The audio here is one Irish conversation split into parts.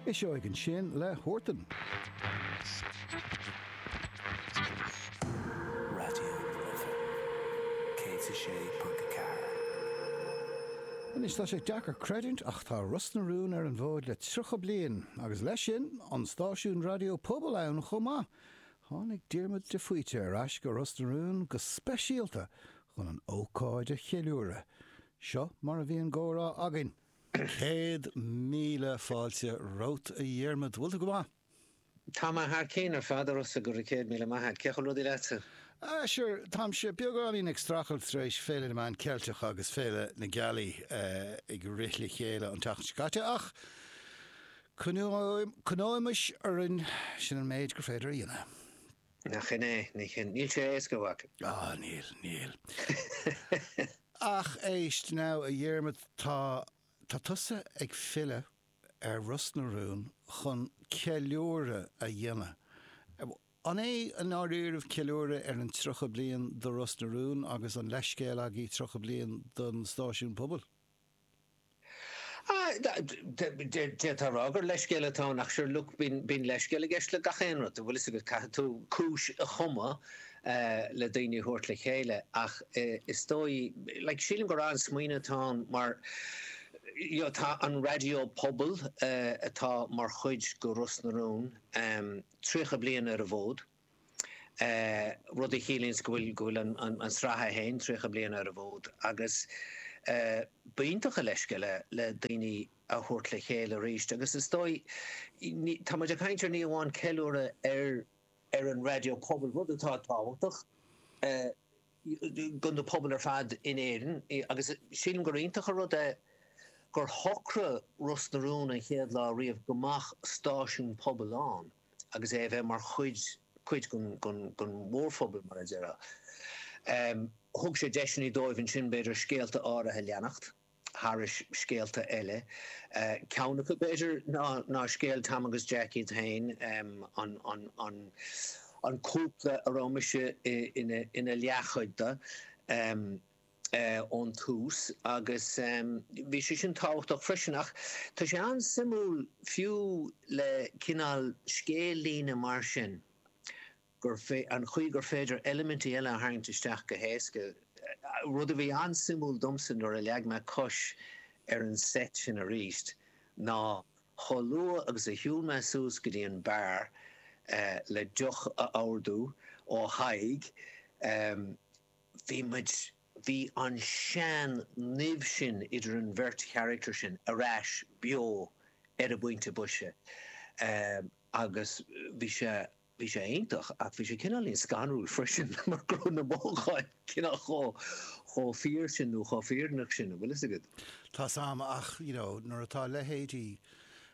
Eiseoidh ansin le Huartan. Raidió na Life 106.4. Anois tá sé deacair creidiúint ach tá Ros na Rún ar an bhfód le 30 bliain agus leis sin an stáisiún raidió pobail ann chomh maith. Tháinig Diarmuid de Faoite ar ais go Ros na Rún go speisialta chun an ócáid a cheiliúradh. Seo mar a bhí an comhrá againn. Céad míle fáilte romhat a Dhiarmaid. Bhfuil tú go maith? Tá mé thar cinn ar fad, a Rossa, go raibh céad míle maith a't. Cén chaoi a bhfuil rudaí leatsa? Ah, sure, táimse beagáinín ag strachailt tar éis Féile na Meán Ceilteach agus Féile na Gealaí ag rith le chéile an tseachtain seo caite ach coinneoimis orainn, sin an méid gur féidir a dhéanamh. Nach shin é? Níl sé éasca, a mhac. Á, níl, níl. Ach éist now, a Dhiarmaid, tá, tá tusa ag filleadh ar Ros na Rún chun ceiliúradh a dhéanamh. An é i ndáiríribh ceiliúradh ar an tríocha bliain do Ros na Rún agus an leithscéal agaibh tríocha bliain don stáisiún pobail? D'fhéadfá a rá gur leithscéal atá ann ach sure look bíonn leithscéal i gceist le gach aon rud, bhfuil 'fhios agat. Caithfidh tú cúis a chumadh le daoine a thabhairt le chéile ach is dóigh, like sílim gur an-smaoineamh atá ann mar you know tá an raidió pobail atá mar chuid de Ros na Rún 30 bliain ar an bhfód. rud a chiallaíonns go bhfuil an sraith é féin tríocha bliain ar an bhfód agus ba iontach a leithscéal é le daoine a thabhairt le chéile arís agus is dóigh, tá muid ag caint ar ní amháin ceiliúradh ar ar an raidió pobail, rud atá tábhachtach do na pobail ar fad in Éirinn agus sílim gur iontach a rud é gur shocraigh Ros na Rún an chéad lá riamh go mbeadh stáisiún pobail ann. agus é a bheith mar chuid, cuid den, den mhórphobal, mar a déarfá. Thug sé deiseanna dóibh ansin, b'fhéidir, scéalta áirithe a leanacht, thairis scéalta eile. Ceann acu, b'fhéidir, ná, ná scéal Tom agus Jack iad féin, an, an, an, an cúpla a raibh mise i, ina, ina leathchuid de. ón tús agus bhí sé sin tábhachtach freisin. Ach tá sé an-suimiúil fiú le cineál scéal-líne mar sin gur, an chaoi gur féidir eilimintí eile a tharraingt isteach go héasca. Rud a bhí an-suimiúil domsa nuair a leag mé cos ar an seit sin arís ná chomh luath agus a shiúil mé suas go dtí an beár le deoch a ordú ó Thadhg, bhí muid, bhí an tseanimh sin idir an bheirt charachtar sin ar ais beo ar an bpointe boise agus bhí sé, bhí sé iontach ach bhí sé cineáilín scanrúil freisin mar go raibh na mothúcháin cineál chomh, chomh fíor sin nó chomh fírinneach sin, an bhfuil fhios agat. Tá 's 'am ach you know nuair atá leithéidí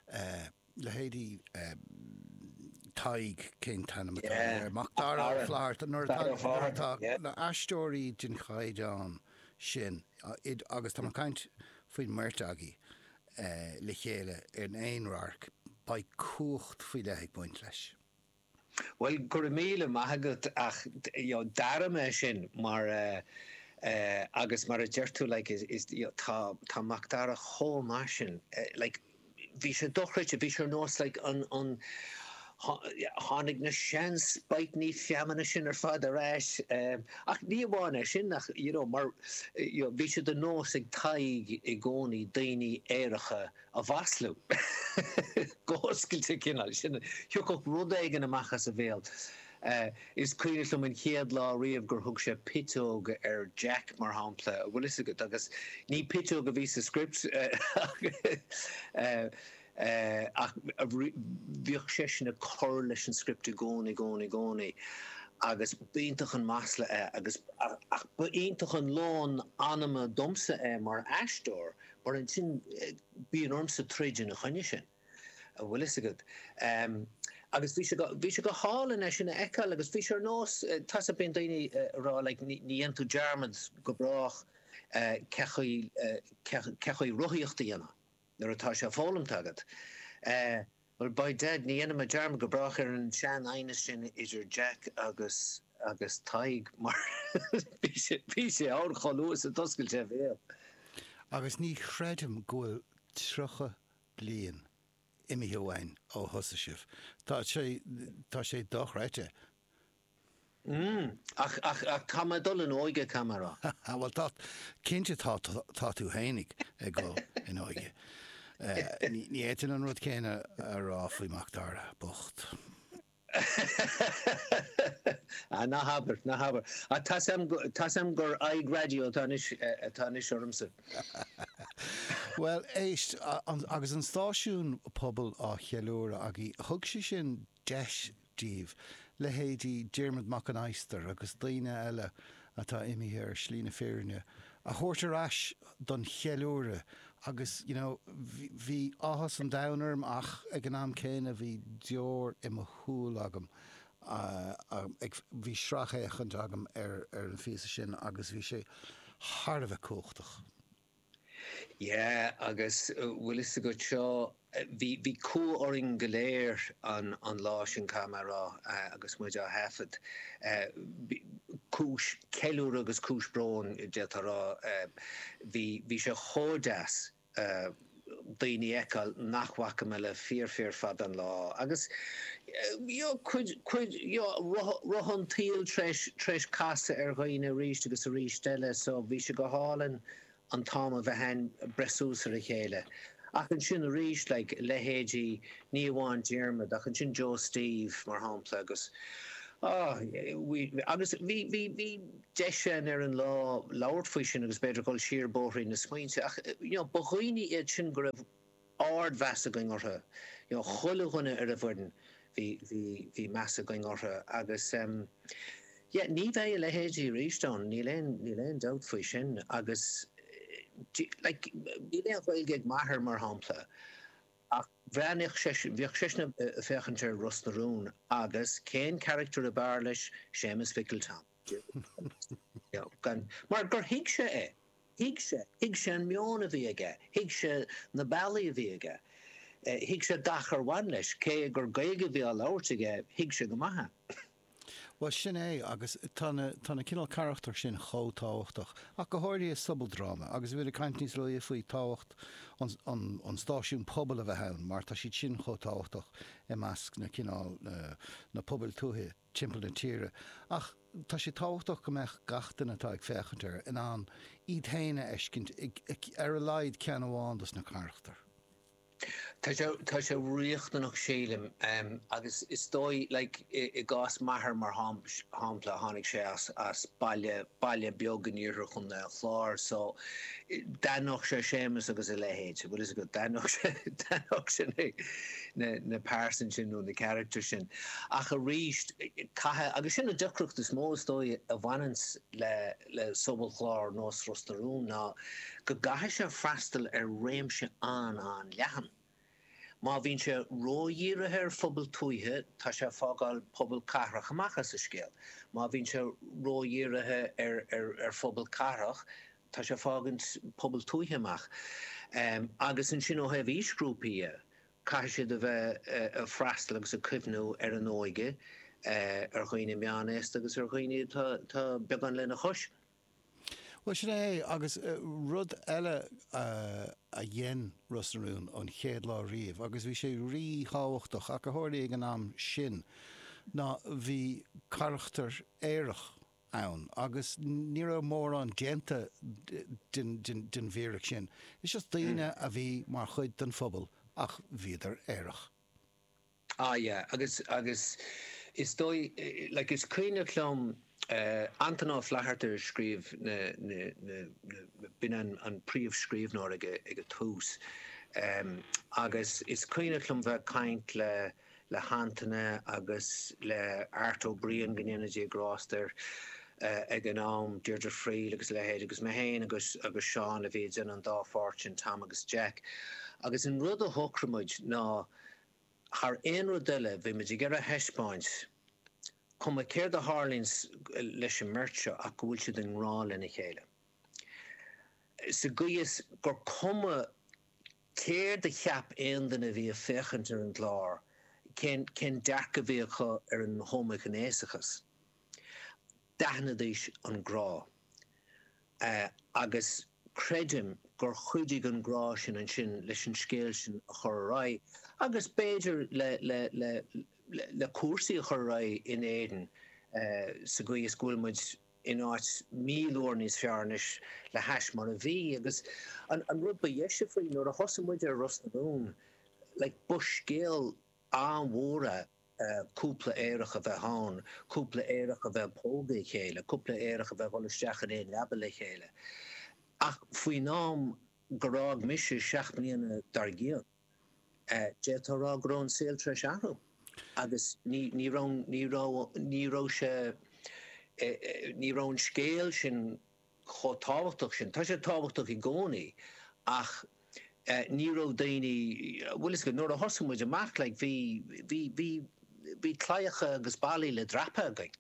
eh. leithéidí Tadhg, cén t-ainm atá aige, Macdara Ó Fátharta, nuair atá na aisteoirí den chaighdeán sin agus tá mé ag caint faoin mbeirt agaibh le chéile in aon radharc, beidh cumhacht faoi leith ag baint leis. Bhuel, go raibh míle maith agat ach you know d'airigh mé sin mar eh eh agus mar a deir tú like is is you know tá tá Macdara chomh maith sin eh like bhí sé dochreidte, bhí sé ar nós like an an tho- yeah tháinig na seanbhóitíní feamainne sin ar fad ar ais eh ach ní amháin é sin ach you know mar eh, you know bhí sé de nós ag Tadhg i gcónaí daoiní aeracha a mhaslú go hoscailte cineál sin, thiocfadh rud éigin amach as a bhéal. Is cuimhneach liom an chéad lá riamh gur thug sé piteog ar Jack, mar shampla, bhfuil fhios agat, agus ní piteog a bhí sa script ach bhíodh seisean ag cur leis an script i gcónaí, i gcónaí, i gcónaí agus b'iontach an masla é agus, ach b'iontach an lón anama domsa é mar aisteoir Mar ansin bíonn ormsa troid ina choinne sin, a bhfuil fhios agat. Agus bhí sé, bhí sé go hálainn é sin a fheiceáil agus bhí sé ar nós, tá sa, bíonn daoine ag rá like ní dhéanann tú dearmad go brách cén chaoi, cén chaoi rothaíocht a dhéanamh nuair atá sé foghlamtha agat. Bhuel, by dad, ní dhéanfaimid dearmad go brách ar an seanaighneas sin idir Jack agus agus Tadhg mar bhí sé bhí sé ann chomh luath is a d'oscail sé a bhéal. Agus ní chreidim go bhfuil tríocha bliain imithe uainn ó thosaigh sibh. Tá sé, tá sé dochreidte. Ach, ach, ach tá mé ag dul in óige, caithfidh mé rá. Á, bhuel, tá, cinnte tá, tá tú féin ag dul in óige. Ní fhéadfainn an rud céanna a rá faoi Mhacdara bocht. Á, ná habair, ná habair. Á, tá's a'm, tá's a'm gur aghaidh raidió atá anois, atá anois ormsa. Bhuel, éist, agus an stáisiún pobail á cheiliúradh againn, thug sé sin deis dóibh, leithéidí Diarmuid Mac an Adhastair agus daoine eile atá imithe ar Shlí na Fírinne, a thabhairt ar ais don cheiliúradh agus you know bhí áthas an domhain orm ach ag an am céanna bhí deoir i mo shúil agam ó bhí sracfhéachaint agam ar an phíosa sin agus bhí sé thar a bheith cumhachtach. Yeah agus bhfuil fhios agat seo bhí bhí cumha orainn go léir an an lá sin caithfidh mé a rá agus muid á thaifead. Cúis ceiliúradh agus cúis bróin d'fhéadfá a rá. Bhí bhí sé chomh deas. daoine a fheiceáil nach bhfaca mé le fíor fíor fada an lá. Agus you know cuid cuid you know rotha an tsaoil tréis tréis casadh ar dhaoine arís agus arís eile so bhí sé go hálainn an t-am a bheith a'ainn breith suas ar a chéile. Ach ansin arís like leithéidí ní amháin Diarmaid ach ansin Joe Steve mar shampla agus ah you know agus bhí bhí bhí deis againn ar an lá labhairt faoi sin agus b'fhéidir dhul siar bóithrín na smaointe. Ach you know ba dhaoine iad sin go raibh ard mheas againn orthu. You know chuile dhuine ar an bhfoireann bhí bhí bhí meas againn orthu agus em yeah ní bheidh a leithéidí arís ann níl aon níl aon dabht faoi sin agus you know like níl aon Ghaeilge ag m'athair mar shampla ach bhreathnaíodh seisean bhíodh seisean a' féachaint ar Ros na Rún agus cén character a b'fhearr leis Séamus Mhicil Tom. Mar gur thuig sé é. Thuig sé. Thuig sé an meon a bhí aige. Thuig sé na bealaí a bhí aige. Thuig sé gach ar bhain leis. Cé gur Gaeilge a bhí á labhairt aige, thuig sé go maith é. Bhuel, sin é. Agus tá na cineál carachtar sin chomh tábhachtach, ach go háirithe i sobaldráma. Agus bhí tú ag caint níos luaithe faoi tábhacht an stáisiún pobail a bheith ann, mar tá siad sin chomh tábhachtach i measc na cineál, na pobail tuaithe. timpeall na tíre, ach tá sé tábhachtach go mbeadh gach duine atá ag féachaint air in ann iad féin a fheiscint i ar a laghad ceann amháin dos na carachtair. Tá sé tá sé riachtanach sílim agus is dóigh like i gcás m'athair mar shampla tháinig sé as baile baile beag in iarthar Chontae an Chláir so d'aithneodh sé Séamus agus a leithéid, bhfuil fhios agat, d'aithneodh sé, d'aithneodh sé na, na pearsain sin nó na characters sin. Ach arís caithfidh, agus sin an deacracht is mó is dóigh a bhaineanns le, le sobalchlár nós Ros na Rún ná go gcaithfidh sé freastal ar réimse an-an-leathan. Má bhíonn sé ró-dhírithe ar phobail tuaithe tá sé ag fágáil pobail cathrach amach as an scéal. Má bhíonn sé ró-dhírithe ar phobail cathrach tá sé ag fágaint pobail tuaithe amach. Agus ansin ó thaobh aoisghrúpaí dhe, caithfidh siad a bheith ag freastal agus ag cuimhniú ar an óige, ar dhaoine meán-aosta agus ar dhaoine atá beagán lena chois. Bhuel, sin é é. Agus rud eile a dhein Ros na Rún ón chéad lá riamh, agus bhí sé rí-thábhachtach, a tharlaigh ag an am sin ná go raibh carachtar aerach ann agus ní raibh mórán déanta den bhfíric sin. Is just daoine a bhí mar chuid den phobal ach bhíodar aerach. Ah yeah agus, agus is dóigh, like is cuimhneach liom Antaine Ó Flatharta a scríobh na, na, na, na, na, b'in an, an príomh scríobhnóir ag a, ag a tús ehm agus is cuimhneach liom bheith ag caint le, le hAntaine agus le Art Ó Briain go ndéana Dia grásta air eh ag an am, Deirdre Friel agus a leithéid agus mé féin agus, agus Seán a bhí ag déanamh an dá pháirt sin Tom agus Jack agus an rud a shocraigh muid ná thar aon rud eile bhí muid ag iarraidh a thaispeáint, cuma céard a tharlaíonn leis an mbeirt seo, ach go bhfuil siad i ngrá lena chéile. Sa gcaoi is gur cuma céard a cheap aon duine a bhí ag féachaint ar an gclár, cén dearcadh a bhí acu ar an homaighnéasachas, D'aithnidís an grá. Agus creidim gur chuidigh an grá sin ansin leis an scéal sin a chur ar aghaidh agus b'fhéidir le cúrsaí a chur ar aghaidh in Éirinn sa gcaoi is go bhfuil muid in áit míle uair níos fearr anois le hais mar a bhí. Agus an rud ba dheise faoi, nuair a thosaigh muid ar Ros na Rún, like, ba scéal an-mhór é. cúpla aerach a bheith ann, cúpla aerach a bheith ag pógadh a chéile, cúpla aerach a bheith ag dhul isteach in aon leaba le chéile. Ach faoin am gur fhág mise seacht mbliana dár gcionn, d'fhéadfá a rá go raibh an saol tar eis athrú agus ní raibh, ní raibh, ní raibh sé, ní raibh an scéal sin. chomh tábhachtach sin. Tá sé tábhachtach i gcónaí ach ní raibh daoine, bhuel is go, nuair a thosaigh muid amach like bhí, bhí, bhí, bhí claíocha agus ballaí le dreapadh againn.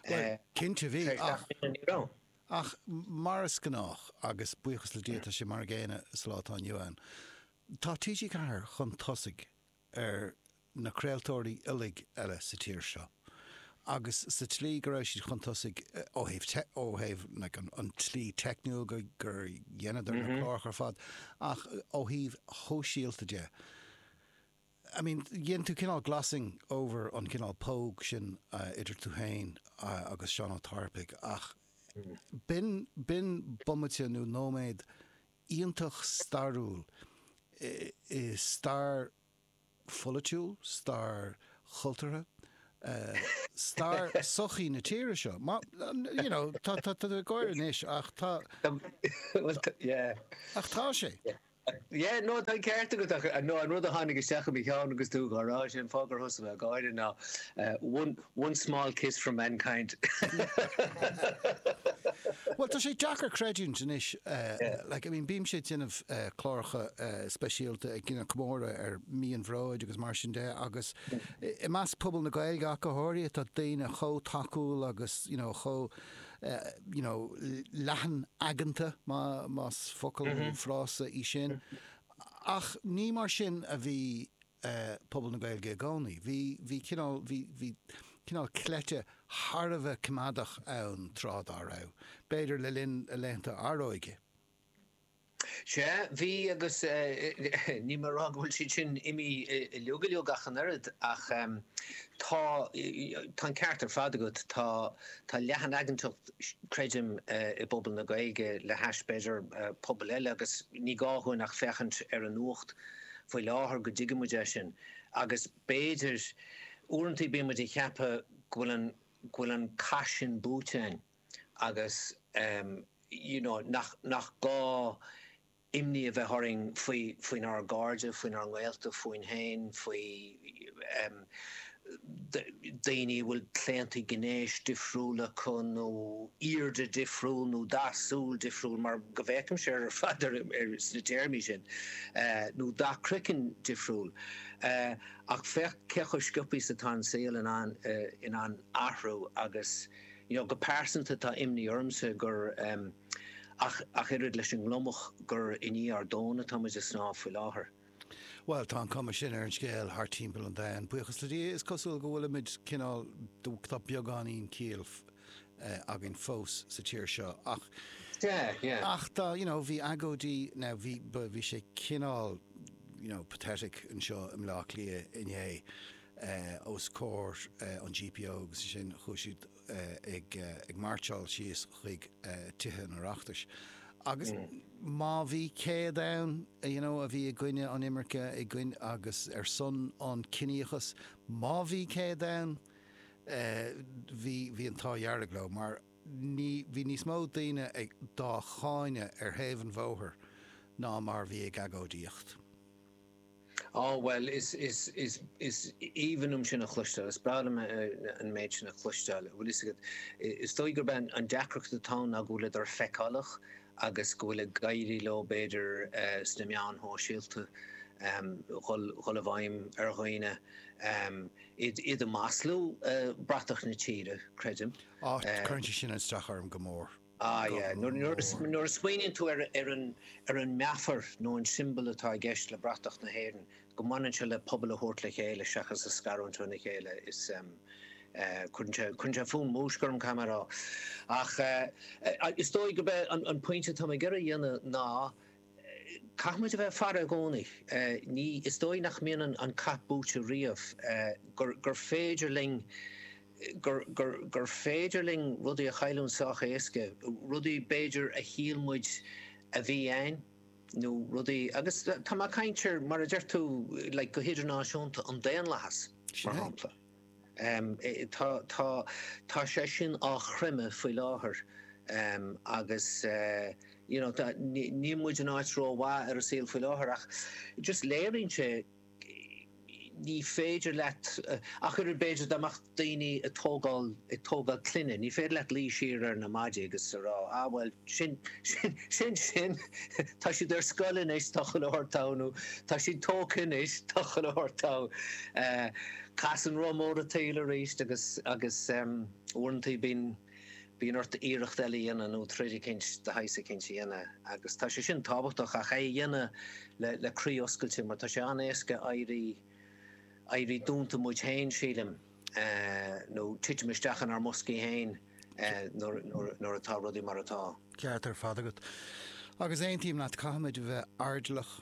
Bhuel, cinnte bhí ach, ach mar is gnách agus buíochas le Dia tá sé mar an gcéanna sa lá atá inniu ann, tá TG4 chun tosaigh. ar na craoltóirí uilig eile sa tír seo agus sa tslí go raibh siad chun tosaigh ó thaobh, ó thaobh like an tslí teicniúil go, gur dheineadar na cláracha ar fad ach ó thaobh shóisialta de I mean dhein tú cineál glossing over an cineál póg sin idir tú féin agus Seán Ó Tarpaigh ach b'in, b'in bomaite nó nóiméad iontach stairiúil i stair pholaitiúil, stair chultúrtha, stair sochaí na tíre seo. You know, tá tú ag gáire anois ach tá. Bhuel, yeah. Ach tá sé. Yeah, no, tá an ceart agat ach an rud a tháinig isteach i mo cheann agus tú ag rá sin, fáth ar thosaigh mé ag gáire, ná one, One small kiss for mankind. Bhuel, tá sé deacair creidiúint anois, like, I mean, bímse ag déanamh cláracha speisialta ag déanamh comóradh ar Mí an Bhróid agus mar sin de agus i measc pobal na Gaeilge ach go háirithe tá daoine chomh tacúil agus, you know, chomh, you know, leathan-aigeanta, más focal nó frása í sin, ach ní mar sin a bhí. eh, pobal na Gaeilge i gcónaí. Bhí, bhí cineál, bhí, bhí cineál cleite thar a bheith coimeádach ann tráth dá raibh, b'fhéidir le linn laethanta Aróige. Sea, bhí agus eh, níl mé a' rá go bhfuil siad sin imithe uilig, uilig ach an oiread ach em, tá, tá an ceart ar fad agat, tá, tá leathanaigeantacht creidim eh, i bpobal na Gaeilge le hais b'fhéidir eh, pobal eile agus ní gá dhúinn ach féachaint ar an nuacht faoi láthair go dtuigfimid é sin agus b'fhéidir uaireanta bímid ag ceapadh go bhfuil an go bhfuil an cath sin buaite againn agus you know nach nach gá imní a bheith orainn faoi faoinár gcairde faoinár ngaolta fúinn féin faoi daoine a bhfuil claontaí gnéis difriúil acu nó aoirde difriúil nó dath súl difriúil, mar go bhféachaimse air ar fad sna téarmaí sin, nó dath croiceann difriúil. Ach féach cé chomh sciobtha is atá an saol in ann athrú agus you know go pearsanta tá imní ormsa gur ach oiread leis an ngliomach gur i ndiaidh ár dtóin atáimid ag snámh faoi láthair. Bhuel, tá an cuma sin ar an scéal thart timpeall an domhain, buíochas le Dia, is cosúil go bhfuilimid cineál, tá beagáinín ciall againn fós sa tír seo ach, yeah, yeah. ach tá, you know, bhí agóidí, now bhí, ba, bhí sé cineál, you know, pathetic anseo i mBleá Cliath inné os comhair an GPO agus ansin chuaigh siad, ag mairtseáil síos chuig Tithe an Oireachtais agus má bhí céad ann you know a bhí i gcoinne an imirce i gcoinne agus ar son an ciníochas má bhí céad ann bhí bhí an t-ádh dhearg leo mar bhí níos mó daoine dhá gcáineadh ar thaobh an bhóthair ná mar bhí ag agóidíocht. Á, bhuel, is, is, is, is aoibhinn liom sin a chloisteáil, is breá liom an méid sin a chloisteáil. Bhuel, fhios agat, is dóigh gurb é an deacracht atá ann ná go bhfuil siad feiceálach agus go bhfuil ag éirí leo, b'fhéidir, sna meáin shóisialta, dhul, dhul i bhfeidhm ar dhaoine, a mhaslú, bratach na tíre, creidim. Á, cuireann sé sin isteach orm go mór. Ah yeah, nuair a smaoiníonn tú ar an meafar nó an siombal atá i gceist le bratach na hÉireann, go mbaineann sé le pobal a thabhairt le chéile seachas a scarúint óna chéile, is cuireann sé fonn múisce orm caithfidh mé a rá. Ach is dóigh gurb é an pointe atá mé ag iarraidh a dhéanamh ná, Caithfimid a bheith ag faire i gcónaí. Ní, is dóigh nach mbíonn an cath buaite riamh, gur, gur féidir linn, gur, gur, gur féidir linn rudaí a chailliúint sách éasca, rudaí b'fhéidir a shíl muid a bhí a'ainn nó rudaí agus tá mé ag caint ar mar a deir tú like go hidirnáisiúnta, an daonlathas mar shampla. Tá, tá, tá sé sin á chreimeadh faoi láthair agus you know tá, níl muid in áit rómhaith ar an saol faoi láthair ach just léiríonn sé ní féidir leat ach oiread b'fhéidir dá mbeadh daoine ag tógáil, ag tógáil clainne, ní féidir leat luí siar ar na maidí agus a rá ah bhuel sin, sin, sin sin, tá siad ar scoil anois, tá chuile shórt togha nó tá siad tógtha anois, tá chuile shórt togha. Casann roth mór an tsaoil arís agus agus uaireantaí bíonn bíonn ort iarracht eile a dhéanamh nó troid eicínt de shaghas eicínt a dhéanamh agus tá sé sin tábhachtach ach é a dhéanamh le le croí oscailte mar tá sé an-éasca éirí éirí dúnta muid féin sílim nó titim isteach inár mboscaí féin nuair nuair nuair atá rudaí mar atá. Ceart ar fad agat. Agus aontaím leat, caithfimid a bheith airdeallach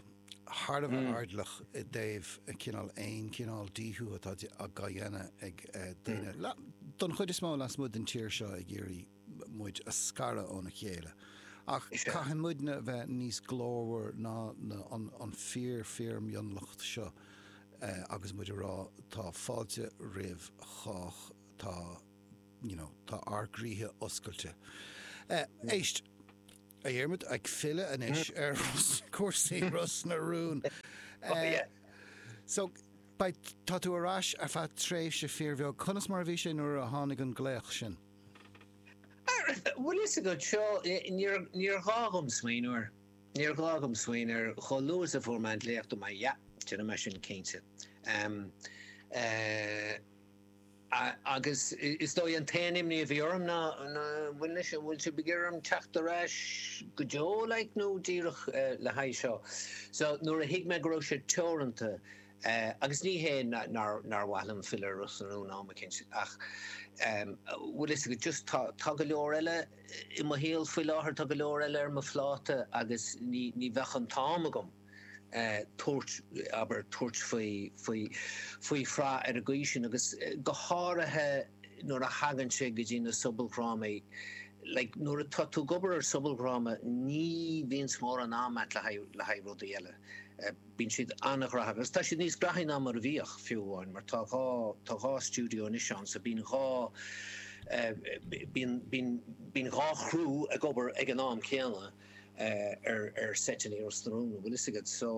thar a bheith airdeallach i dtaobh cineál aon chineál gríosú atá á dhéanamh ag daoine, don chuid is mó lasmuigh den tír seo, ag iarraidh muid a scaradh óna chéile. Ach caithfidh muidne a bheith níos glórmhar ná an fíor fíor mhionlach seo agus muid a rá tá fáilte roimh chách, tá you know tá ár gcroíthe oscailte. Éist! A Dhiarmuid, ag filleadh anois ar chúrsaí Ros na Rún. So, beidh, tá tú ar ais ar feadh tréimhse fíorbheag. Conas mar a bhí sé nuair a tháinig an glaoch sin? Bhfuil fhios agat, seo, níor ghá dhom smaoineamh air. Níor ghá dhom smaoineamh air. Chomh luath is a fuair mé an glaoch, dúirt mé, yeah, déanfaidh mé sin cinnte. A, Agus is dóigh an t-aon imní a bhí orm ná, ná bhain leis, an bhfuil sibh ag iarraidh orm teacht ar ais go deo like nó díreach le haghaidh seo. So nuair a thuig mé go raibh sé teoranta, agus ní hé nár, nár mhaith liom filleadh ar Ros na Rún am eicínt ach bhfuil fhios agat just tá, tá go leor eile i mo shaol faoi láthair, tá go leor eile ar mo phláta agus ní, ní bheadh an t-am agam. tabhairt, abair, tabhairt faoi, faoi, faoi shraith ar an gcaoi sin agus go háirithe nuair a thagann sé go dtí na sobaldhrámaí, like, nuair atá tú ag obair ar sobaldhráma ní bhíonns mórán am agat le haghaidh, le haghaidh rudaí eile. Bíonn siad an-ghnaitheach agus tá siad níos gnaithí ná mar a bhíodh, fiú amháin, mar tá dhá, tá dhá stiúideo anois ann so bíonn dhá, bíonn, bíonn, bíonn dhá chriú ag obair ag an am céanna. ar seit anois i Ros na Rún, an bhfuil fhios agat. So,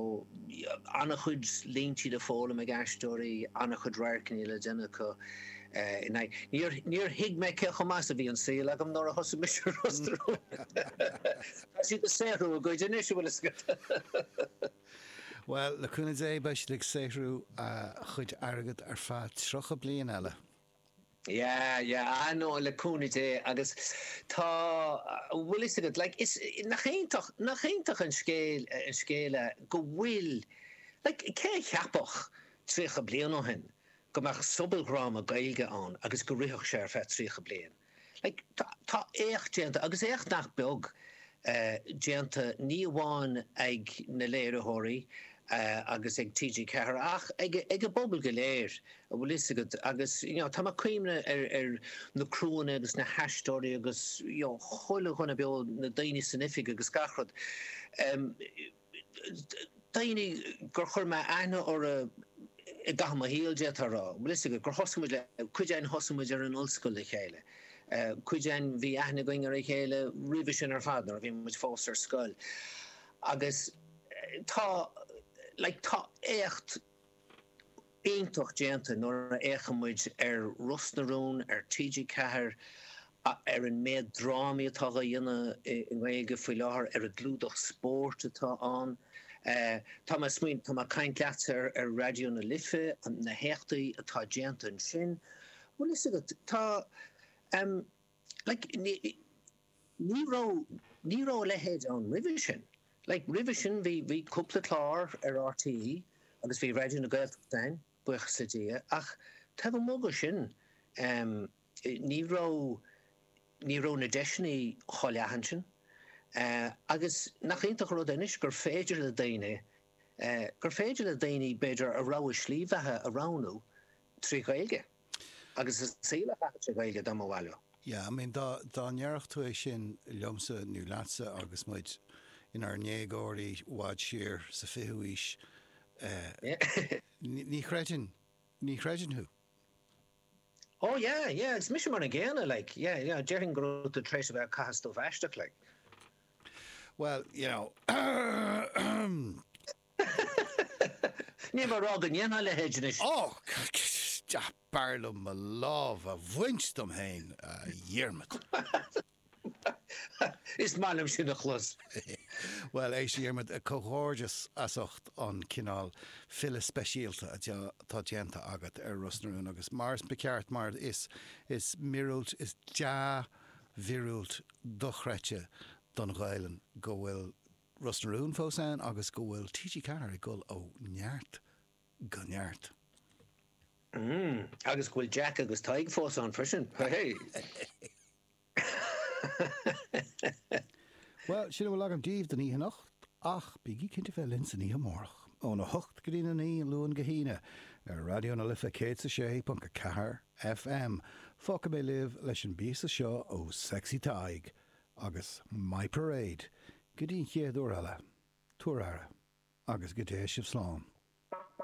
an-chuid línti le foghlaim ag aisteoirí, an-chuid radharcanna le déanamh acu in aghaidh. Níor thuig mé cé chomh maith is a bhí an saol agam nuair a thosaigh mise i Ros na Rún. Tá siad ag saothrú a gcuid anois, an bhfuil fhios agat. Bhuel, le cúnamh Dé beidh siad ag saothrú a chuid airgid ar feadh 30 bliain eile. Yeah, yeah, ah no, le cúnamh Dé agus tá, an bhfuil fhios agat, like, is, nach iontach, nach iontach an scéal, an scéal é go bhfuil, like, cé a cheapfadh tríocha bliain ó shin go mbeadh sobaldhráma Gaeilge ann agus go rithfeadh sé ar feadh tríocha bliain? Like, tá éacht déanta, agus éacht nach beag déanta, ní amháin ag na léiritheoirí agus ag TG4 ach ag an bpobal go léir, a' bhfuil 'fhios agat, agus you know tá mé 'cuimhneamh ar na criúnna agus na haisteoirí agus you know chuile dhuine beo, na daoine san oifig agus gach rud. daoine gur chuir mé aithne orra i gcaitheamh mo shaoil d'fhéadfá a rá. Bhfuil 'fhios agat, gur thosaigh muid le, cuid againn thosaigh muid ar an Ollscoil le chéile. Cuid againn bhí aithne againn ar a chéile roimhe sin ar fad nuair a bhí muid fós ar scoil. Agus tá, like, tá éacht. iontach déanta nuair a fhéachann muid ar Ros na Rún ar TG4, ar an méad drámaí atá dhá dhéanamh i nGaeilge faoi láthair, ar an gclúdach spóirt atá ann. Tá mé ag smaoineamh, tá mé ag caint leatsa ar Raidió na Life, na héachtaí atá déanta ansin. Bhfuil fhios agat, tá. Ní raibh a leithéid ann roimhe sin. Roimhe sin bhí cúpla clár ar rte agus bhí Raidió na Gaeltachta ann, buíochas le Dia, ach taobh amuigh de sin ní raibh na deiseanna chomh leathan sin. Agus nach iontach an rud é anois gur féidir le daoine, gur féidir le daoine b'fhéidir a rogha slí bheatha a roghnú trí Ghaeilge. Agus a saol a chaitheamh sa Ghaeilge dá mba mhaith leo. Yeah, I mean, dá, dá ndéarfadh tú é sin liomsa nó leatsa agus muid inár ndéagóirí i bhfad siar sa 20ú aois, eh, ní, ní chreidfinn, ní chreidfinn thú. Oh yeah, yeah, agus mise mar an gcéanna, like, yeah, yeah, déarfainn go raibh tú tar éis a bheith ag caitheamh stuif aisteach, like. Well, you know, Níl mé a rá go ndéanfá a leithéid anois. Ó! B'fhearr liom mo lámh a bhaint díom féin, a Dhiarmaid. Is maith liom sin a chlos. Bhuel, a Dhiarmaid, comhghairdeas as ucht an cineál filleadh speisialta atá déanta agat ar Ros na Rún agus mar is, maith an ceart, mar is miorúilt, is dea-mhiorúilt dochreidte don Ghaelainn go bhfuil Ros na Rún fós ann agus go bhfuil TG4 ag dul ó neart go neart. Mm, agus go bhfuil Jack agus Tadhg fós ann freisin. Bhuel, sin a bhfuil agam daoibh don oíche anocht, ach bígí cinnte bheith linn san oíche amárach, óna hocht go dtí a naoi, Luan go hAoine, ar Raidió na Life 106.4 FM. Fágfaidh mé libh leis an bpíosa seo ó Sexy Tadhg, Agus My Parade! Go dtí an chéad uair eile. Tabhair aire. Agus go dté sibh slán.